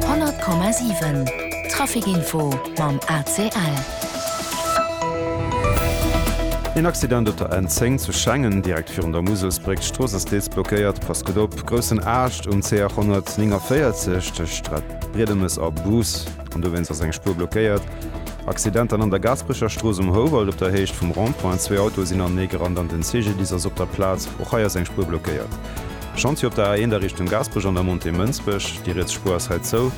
100,7 Trafic Info mam ACL. Een Accident op der N10 zu Schengen, direkt virun der Muselsbréck. D'Strooss ass deels blockéiert. Passt gutt op, groussen Aascht um CR 149 tëscht Briedemes a Bus an dowéinst ass eng Spuer blockéiert. Accident dann an der Gaasperecher Strooss um Houwald op der Héicht vum Rond-point. Zwee Autoe sinn aneegerannt an den CGDIS ass op der Plaz. Och hei ass eng Spuer blockéiert. Chantier op der A1 a Richtung Gaasperech an der Montée Mënsbech, déi riets Spuer ass hei zou,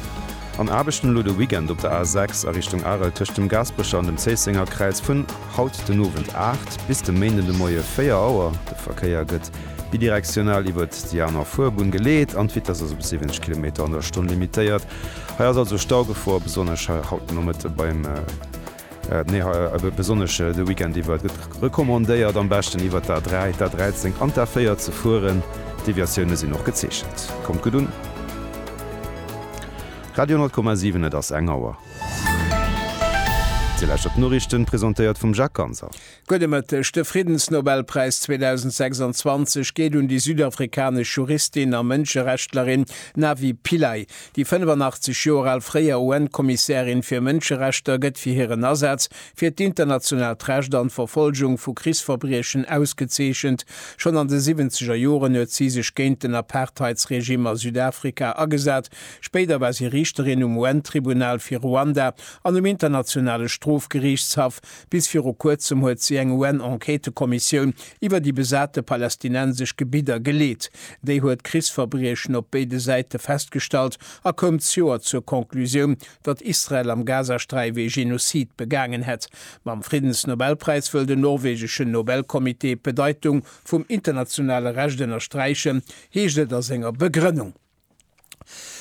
an Aarbechten elo de Weekend op der A6 a Richtung Arel tëscht dem Gaasperecher an dem Zéisséngerkräiz vun haut den Owend 8 bis de Méinden de Moie 4 Auer. De Verkéier gëtt bidirektional iwwert déi aner Fuerbunn geleet an d'Vitess ass op 70 Kilometer an der Stonn limitéiert. Hei ass also Staugefor, besonnesch haut de Nomëtte beim. Nee, hei besonnesch de Weekend iwwer. Et gëtt recommandéiert am beschten iwwer d'A3, d'A13 an d'A4 ze fueren. Deviatioune sinn och gezeechent. Kommt gutt un! Radio 10,7 Et ass eng Auer. Dir lauschtert d'Noriichten, presentéiert vum Jacques Ganser. Gudde Mëtteg, De Friddensnobelpräis 2026 geet un déi südafrikanesch Juristin a Mënscherechtlerin Navi Pillay. Déi 85 Joer al fréier UN-Kommissärin fir Mënscherechter gëtt fir hiren Asaz fir d'internationaalt Recht an d'Verfolgung vu Krichsverbriechen ausgezeechent. Schonn an de siwwenzeger Joren huet si sech géint den Apartheidsregime a Südafrika agesat. Spéider war si Riichterin um UN-Tribunal fir Ruanda an um Internationale Strofgeriichtshaff. Bis viru kuerzem huet si eng UN-Enquêtëkommissioun iwwer déi besate palästinensesch Gebidder geleet. Déi huet Krichsverbriechen op béide Säite festgestallt a koum d'Joer zur Conclusioun, datt Israel am Gazasträif ee Genozid begaangen hätt. Mam Friddensnobelpräis wëll den norwegeschen Nobelcomité d'Bedeitung vum internationale Recht ënnersträichen, heescht et a senger Begrënnung.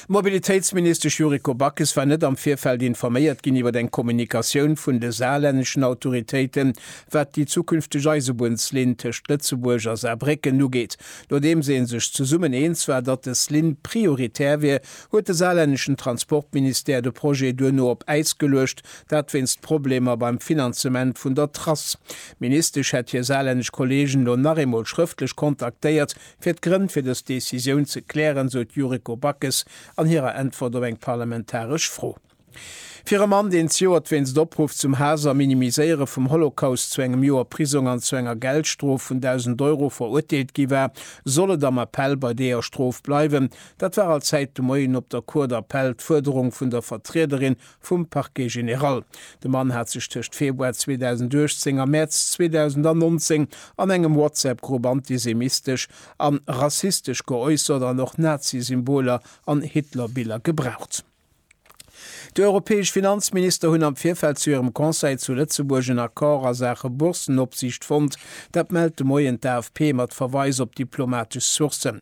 D'Mobilitéitsministesch Yuriko Backes war net am Virfeld informéiert ginn iwwer eng Kommunikatioun vun de saarlänneschen Autoritéiten, wat déi zukünfteg Eisebunnslinn tëscht Lëtzebuerg a Saarbrécken ugeet. Nodeems ee sech zesummen eens war, datt dës Linn prioritär wier, huet de saarlänneschen Transportministère de Projet duerno op Äis geluecht, dat wéinst Problemer beim Finanzement vun der Trass. D'Ministesch hätt hir saarlännesch Kolleegen elo nach eemol schrëftlech kontaktéiert, Fir d'Grënn fir dës Decisioun ze klären, sot d'Yuriko Backes an hirer Äntwert op eng parlamentaresch Fro. Fir e Mann, deen zejoert wéinst Opruff zum Haass a Minimiséiere vum Holocaust zu engem Joer Prisong an zu enger Geldstrof vun 1.000 Euro verurteelt gi war, soll et am Appell bei deeër Strof bleiwen. Dat war allzäit de Moien op der Cour d'appel d'Fuerderung vun der Vertriederin vum Parquet général. De Mann hat sech tëscht Februar 2018 a Mäerz 2019 an engem WhatsApp-Grupp antisemistesch an rassistesch geäussert an och Nazi-Symboler an Hitler-Biller gebraucht. Déi europäesch Finanzminister hunn am Virfeld zu hirem Conseil zu Lëtzebuerg en Accord a Saache Boursenopsiicht fonnt. Dat mellt de Moien d'AFP mat Verweis op diplomatesch Sourcen.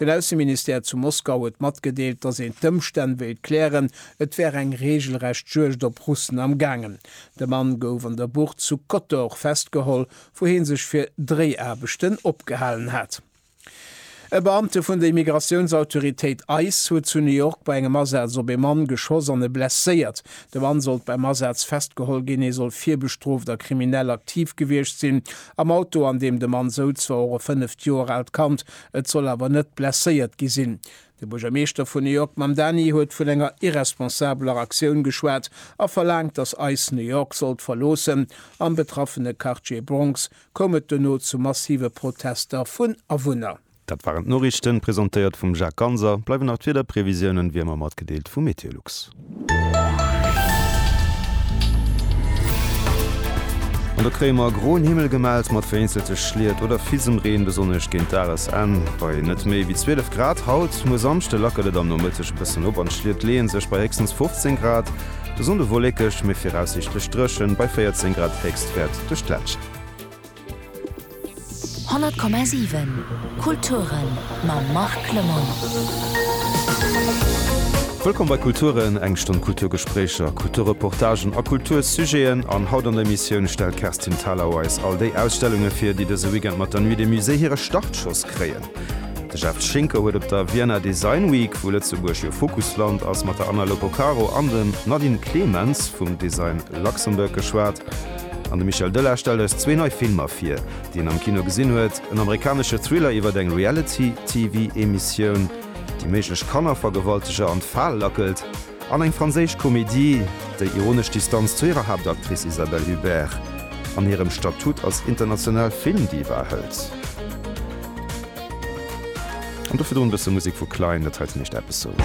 Den Ausseministère zu Moskau huet matgedeelt, datt een d'Ëmstänn wéilt klären, et wär eng reegelrecht Juegd op Russen am gaangen. De Mann gouf an der Bucht zu Kotor festgeholl, wou hie sech fir Dréiaarbechten opgehalen hat. E Beamte vun der Immigratiounsautoritéit ice huet zu New York bei engem Asaz op ee Mann geschoss an e blesséiert. De Mann sollt beim Asaz festgeholl ginn. Hie soll virbestrooft a kriminell aktiv gewiescht sinn. Am Auto, an deem de Mann souz, war och e fënneft Joer aalt Kand, Et soll awer net blesséiert gi sinn. De Buergermeeschter vun New York Mamdani huet vun enger irresponsabeler Aktioun geschwat a verlaangt, datt ice New York sollt verloossen. Am betraffene Quartier Bronx koum et dono zu massive Protester vun Awunner. Dat waren d'Noriichten, presentéiert vum Jacques Ganser. Bleiwen nach d'Wiederprevisiounen, wéi ëmmer matgedeelt vu Meteolux. An da kréie mer groen Himmel gemellt mat vereenzelte Schliet oder Fisemreen, besonnesch géint Dagesenn bei net méi wéi 12 Grad. Haut, muer, Samschde lackelt et am Nomëtteg e bëssen op an d'Schliet leeë sech bei héchstens 15 Grad. De Sonnde wollekeg, mee viraussiichtlech dréchen bei 14 Grad, Héchstwäert duerch d'Ländschent. 100,7 Kulturen mam Marc Clement. Wëllkomm bei Kulturen, eng Stonn Kulturgespréicher, Kulturreportagen a Kultursujeten. An haut an der Emissioun stellt d'Kerstin Thalau eis all déi Ausstellunge vir, déi dëse Weekend mat der Nuit des Musées hire Startschoss kréien. De Jeff Schinker huet op der Vienna Design Week, wou Lëtzebuerg jo Fokusland ass, mat der Anna Lopocaro an dem Nadine Clemens vum Design Luxembourg geschwat. An de Michel Döller stellt eis zwee nei Filmer vir, déi en am Kino gesinn huet, en amerikanesche Thriller iwwert eng Reality-TV-Emissioun, déi méiglech Kannervergewalteger an d'Fal lackelt, an eng franséisch Komedie, déi ironesch Distanz zu hirer Haaptactrice Isabelle Huppert an hirem Statut als international Filmdiva hëlt. An dofir drun e bësse Musek vu Klein, dat heiten heescht Episode.